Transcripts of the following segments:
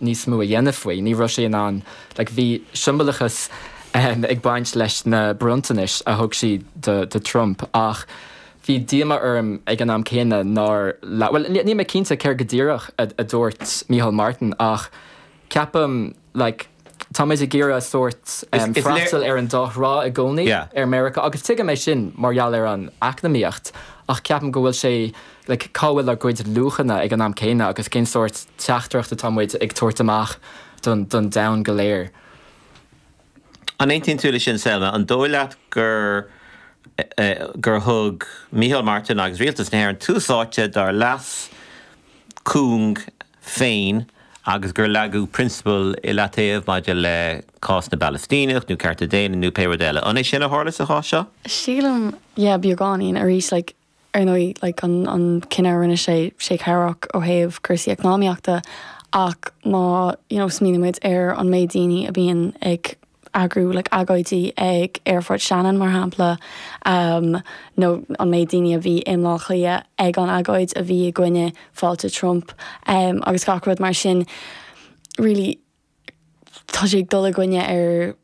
níos mó a dhéanamh faoi. Ní raibh sé in ann, like, bhí siombalachas ag baint leis na bronntanais a thug siad do Trump ach bhí díomá orm ag an am céanna nár labhair, bhuel níl mé cinnte céard go díreach a dúirt Micheál Martin ach ceapaim, like, táimid ag iarraidh sórt freastal ar an dá thrá i gcónaí, ar Meiriceá agus tuigim é sin mar gheall ar an eacnamaíocht ach ceapaim go bhfuil sé like cá bhfuil ár gcuid luachanna ag an am céanna agus cén sórt teachtaireacht atá muid ag tabhairt amach don don domhan go léir. An aontaíonn tú le sin Selma? An dóigh leat gur gur thug Micheál Martin agus Rialtas na hÉireann tús áite dár leas cúng féin agus gur leagadh prionsabail i leataobh maidir le cás na bPalaistíneach nó cearta daonna nó pé rud eile? An é sin a tharla sa chás seo? Sílim yeah beagáinín arís like Ar ndóigh, like, an cinneadh a rinne sé, sé cabhrach ó thaobh cúrsaí eacnamaíochta, ach má, you know, smaoinímid ar an méid daoine a bhíonn ag eagrú, like, agóidí ag Aerfort Shannon, mar shampla, ehm, nó an méid daoine a bhí i mBaile Átha Cliath ag an agóid a bhí i gcoinne fáilte Trump, ehm, agus gach rud mar sin, really, tá sé ag dul i gcoinne ar.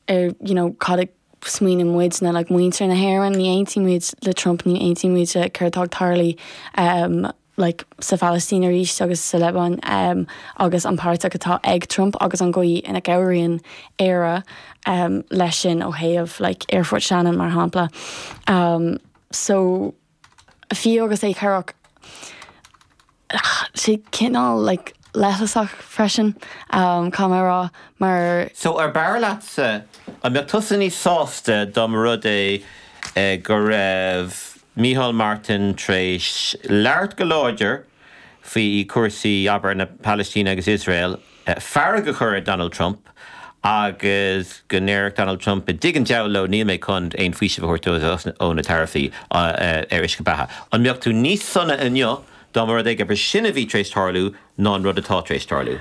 ar you know cad a smaoineann muid nó like muintir na hÉireann, ní aontaíonn muid le Trump, ní aontaíonn muid le céard atá ag tarlú ehm like sa Phalaistín arís agus sa Liobáin ehm agus an páirteach atá ag Trump agus an gcaoi ina gcabhraíonn Éire ehm leis sin ó thaobh like aerfort Shannon mar shampla ehm so fiú agus é cabhrach, sé cineál like leithleasach freisin you know mar. So ar b'fhearr leatsa an mbeadh tusa níos sásta dá mba rud é go raibh Micheál Martin t'réis labhairt go láidir faoi cúrsaí abair na Palaistíne agus Iosrael fearg a chur ar Donald Trump agus go ndéarfadh Donald Trump, i dtigh an deabhail leo, níl mé chun aon faoiseamh a thabhairt dóibh ó na taraifí ar uisce beatha. An mbeadh tú níos sona inniu dá mba rud é gur b'shin a bhí tar éis tarlú ná an rud atá tar éis tarlú?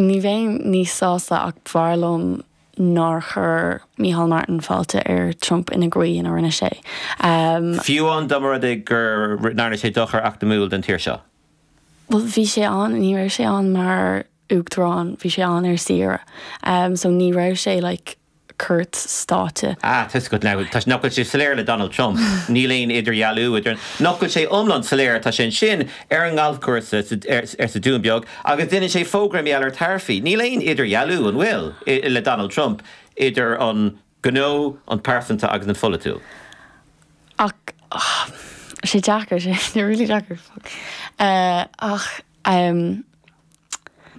Ní bheinn níos sásta ach b'fhearr liom nár chuir Micheál Martin fáilte ar Trump ina gcaoi ina rinne sé. Fiú amháin dá mba rud é go ndearna sé dochar eacnamúil don tír seo? bhuel bhí sé ann ní raibh sé ann mar uachtarán bhí sé ann ar saoire ehm so ní raibh sé like cuairt stáite. Ah tá 'fhios agat now tá sé nach bhfuil sé soiléir le Donald Trump níl aon idirdhealú idir nach bhfuil sé iomlán soiléir tá sé ansin ar an ngalfchúrsa sa ar ar sa Dún Beag agus déanann sé fógra domhanda ar taraifí níl aon idirdhealú an bhfuil i le Donald Trump idir an Gnó, an pearsanta agus an pholaitiúil. Ach tá sé deacair, tá sé really deacair, fuck. Ach ehm.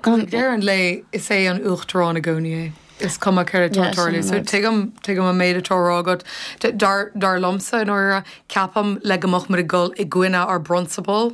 Agus ag deireadh an lae, is é an Uachtarán i gcónaí é. Is cuma céard atá ag tarlú. So tuigim, tuigim an méid atá á rá agat. Dar, dar liomsa, i ndáiríre, ceapaim le, go mbeadh muid ag dul i gcoinne ár bprionsabal.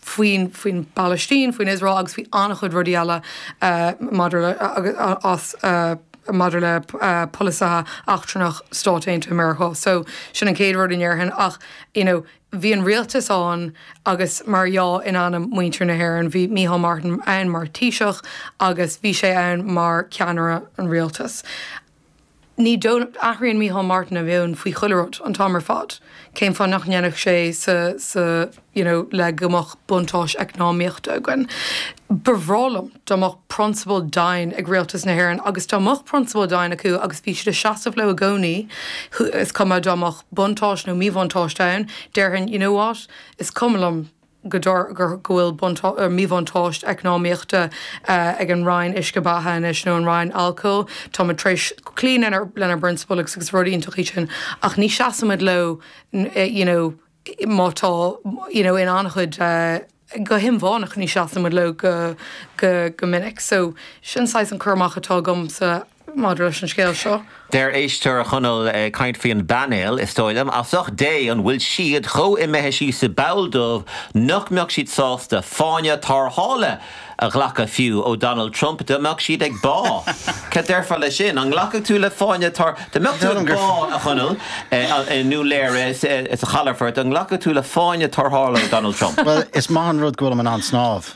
faoin bPalaistín, faoin Iosrael agus faoi an-chuid rudaí eile maidir le polasaithe eachtrannach Stáit Aontaithe Mheiriceá. So, sin an chéad rud a ndéarfainn. Ach, you know, bhí an rialtas ann agus mar dhea in ainm muintir na hÉireann. Bhí Micheál Martin ann mar Thaoiseach agus bhí sé ann mar cheannaire an rialtais. Ar ndóigh nach n-athraíonn Micheál Martin a mheon faoi chuile rud an t-am ar fad, cén fáth nach ndéanfadh sé sa sa you know le go mbeadh buntáis eacnamaíochta againn. Ba bhreá liom dá mbeadh prionsabail daingne ag Rialtas na hÉireann agus dá mbeadh prionsabail daingne acu agus bhí siad ag seasamh leo i gcónaí is cuma dá mbeadh buntáis nó míbhuntáiste ann, déarfainn you know what? is cuma liom. go bhfuil míbhuntáiste eacnamaíochta ag an Roinn Uisce Beatha anois, nó an Roinn Alcóil, táimid tar éis cloí lenár bprionsabail agus is rud iontach é sin ach ní seasaimid leo you know má tá you know in an-chuid go hinmheánach ní seasaimid leo go minic so sin saghas an cur amach atá agamsa Maidir leis an scéal seo. Deir éisteoir, a Chonaill, ag caint faoi an bpainéal, Is dóigh liom, as ucht Dé, an bhfuil siad chomh imithe síos sa bpoll dubh nach mbeadh siad sásta fáinne tarrthála a ghlacadh fiú ó Donald Trump dá mbeadh siad ag bá? Cad déarfá leis sin? An nglacfadh tú le fáinne tar-? Dá mbeadh tú ag bá, a Chonaill, i nDún Laoghaire, sa Chalafort, an nglacfadh tú le fáinne tarrthála ó Donald Trump? Bhuel, is maith an rud go bhfuilim in ann snámh.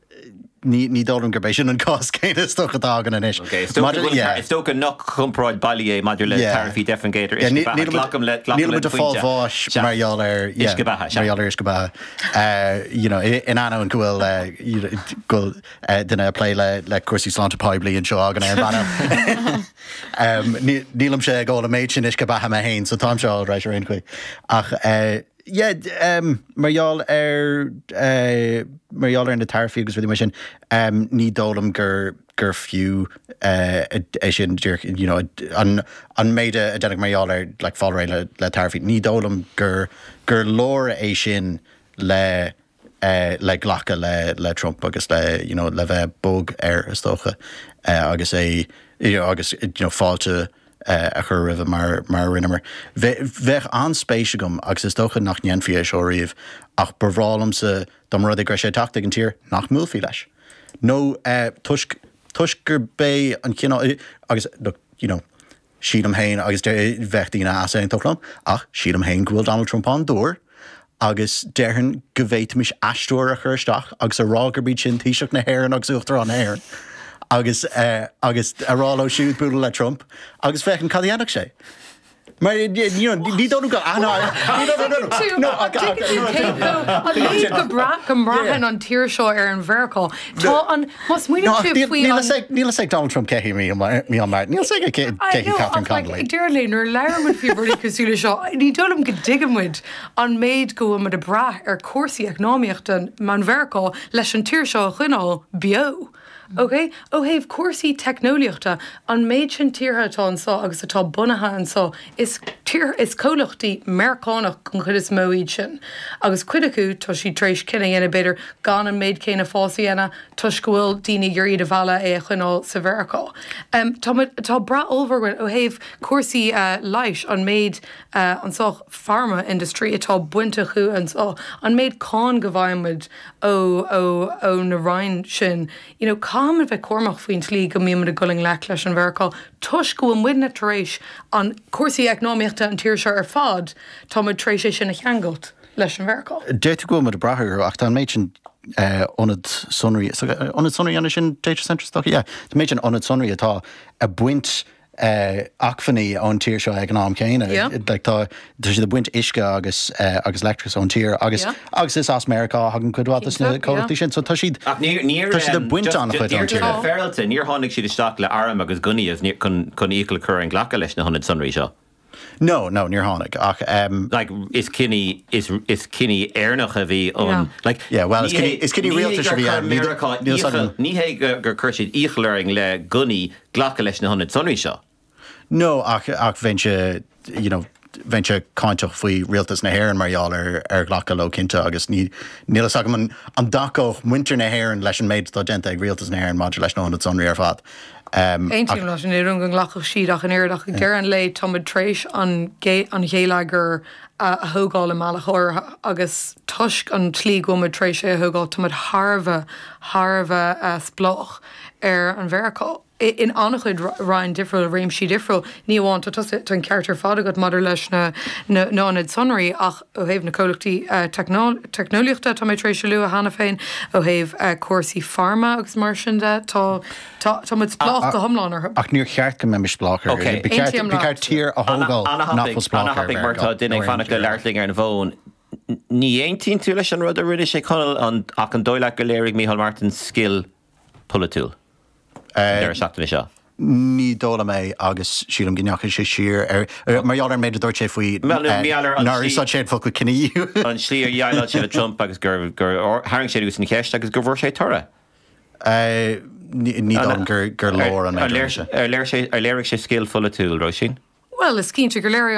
Ní dóigh liom gurb é sin an cás céanna is dócha atá againn anois. Is dócha nach comparáid bhailí é maidir le taraifí deich faoin gcéad ar uisce beatha. Glacaim le do phointe. Níl muid ag fáil bháis mar gheall ar uisce beatha. Mar gheall ar uisce beatha. You know, in ainneoin go bhfuil duine ag plé le cúrsaí sláinte poiblí anseo againn ar an bpainéal, nílimse ag ól an méid sin uisce beatha mé féin, so táimse all right ar aon chaoi. Ach. Mar gheall ar mar gheall ar na taraifí agus rudaí mar sin ní dóigh liom gur gur fiú é sin díreach you know an an méid a déanadh, mar gheall ar like fáil réidh le le taraifí ní dóigh liom gur gur leor é sin le le glacadh le le Trump agus le you know le bheith bog air is dócha agus é you know agus you know fáilte a chur roimhe mar mar a rinneamar. Bheadh an-spéis agam agus is dócha nach ndéanfaí é seo riamh ach ba bhreá liomsa dá mba rud é go raibh sé ag teacht chuig an tír nach mbuailfí leis nó toisc toisc gurb é an cineál agus look you know Sílim féin, agus bheadh daoine ag easaontú liom, ach sílim féin go bhfuil Donald Trump an-dúr agus déarfainn go bhféadfaimis aisteoir a chur isteach agus a rá gurb iad sin Taoiseach na hÉireann agus Uachtarán na hÉireann agus agus a rá leo siúd bualadh le Trump agus féachaint cad a dhéanfadh sé. Mar ní dóigh liom go An líon go breá go mbraitheann an tír seo ar an Mheiriceá. Tá an. Má smaoiníonn tú faoi No, ach níl níl fhios an ag níl fhios ag Donald Trump cé hí Micheál Mar- Micheál Martin. Níl fhios aige cé cé hí Catherine Connolly I know, ach like. ag deireadh an lae, nuair a labhrann muid faoi rudaí cosúil leis seo, ní dóigh liom go dtuigeann muid an méid go bhfuil muid ag brath ar chúrsaí eacnamaíochta ón Mheiriceá leis an tír seo a choinneáil beo. OK? Ó thaobh cúrsaí teicneolaíochta, an méid sin tíortha atá anseo agus atá bunaithe anseo Is tíortha is comhlachtaí Meiriceánach den chuid is mó iad sin, agus cuid acu tá siad tar éis cinneadh a dhéanamh b'fhéidir gan an méid céanna fáis a dhéanamh toisc go bhfuil daoine ag iarraidh iad a mhealladh é a choinneáil sa Mheiriceá. Tá muid, tá brath ollmhór againn ó thaobh cúrsaí leighis, an méid, an saghas pharma industry atá baint acu anseo, an méid cáin go bhfaigheann muid ó, ó, ó na roinn sin. you know caithfimid bheith cúramach faoin tslí go mbímid ag dul i ngleic leis an Mheiriceá toisc go bhfuil muidne tar éis an cúrsaí eacnamaíochta an tír seo ar fad tá muid tar éis é sin a cheangailt leis an Mheiriceá. D'fhéadfadh go bhfuil muid ag brath orthu ach tá an méid sin ionad sonraí ionad sonraí an sin data centres yeah tá méid sin ionad sonraí atá ag baint acmhainní ón tír seo ag an am céanna. Tá siad ag baint uisce agus leictreachas ón tír agus agus is as Meiriceá a thagann cuid mhaith de na comhlachtaí sin, so tá siad ag baint an-chuid ón tír. Níor tháinig siad isteach le airm agus gunnaí chun iachall a chur orainn glacadh leis na hionad sonraí seo. No, no, níor tháinig, ach ehm. like, is cinneadh, is, is cinneadh Éireannach a bhí ann. No. Like, Yeah, well, is cinneadh, is cinneadh rialtais a bhí ann. Ní hé, ní hé gur chuir Meiriceá iachall, ní hé gur, gur chuir siad iachall orainn le gunnaí glacadh leis na hionaid sonraí seo. No, ach, ach bheinnse, you know, bheinnse cáinteach faoi rialtas na hÉireann mar gheall ar, ar ghlacadh leo cinnte, agus ní, níl a fhios agam an, an dtacódh muintir na hÉireann leis an méid atá déanta ag rialtas na hÉireann maidir leis na hionad sonraí ar fad. Aontaím leat, ní dóigh liom go nglacfadh siad ach an oiread ach ag deireadh an lae táimid tar éis an ghéilleagar a thógáil i mbealach áirithe agus toisc an tslí go bhfuilmid tar éis é a thógáil táimid thar a bheith, thar a bheith spleách ar an Mheiriceá in an-chuid roinn difriúil, réimsí difriúil. Ní amháin, tá an ceart ar fad agat maidir leis na hionaid sonraí ach, Ó thaobh na comhlachtaí teicneolaíochta, tá mé tar éis a lua cheana féin, ó thaobh cúrsaí pharma agus mar sin de, tá tá muid spleách go hiomlán orthu. Ach níor cheart go mbeimis spleách orthu. Ba cheart tír a thógáil nach bhfuil spleách orthu. Ana-thapaidh mar tá duine ag fanacht le leath-léim ar an bhfón. Ní aontaíonn tú leis an rud a rinne sé Conall ach an dóigh leat gur léirigh Micheál Martin scil? polaitiúil an deireadh seachtaine seo? Ní dóigh liom é agus sílim go ndeachaigh sé siar ar, mar gheall ar an méid a dúirt sé faoi, níor úsáid sé an focal cinedhíothú. An tslí ar dhéileáil sé le Trump agus gur tharraing sé anuas an cheist agus gur bhfuair sé toradh. Ní dóigh liom gur leor an méid a rinne sé. Ar léirigh sé scil pholaitiúil, Róisín? Bhuel, is cinnte gur léirigh.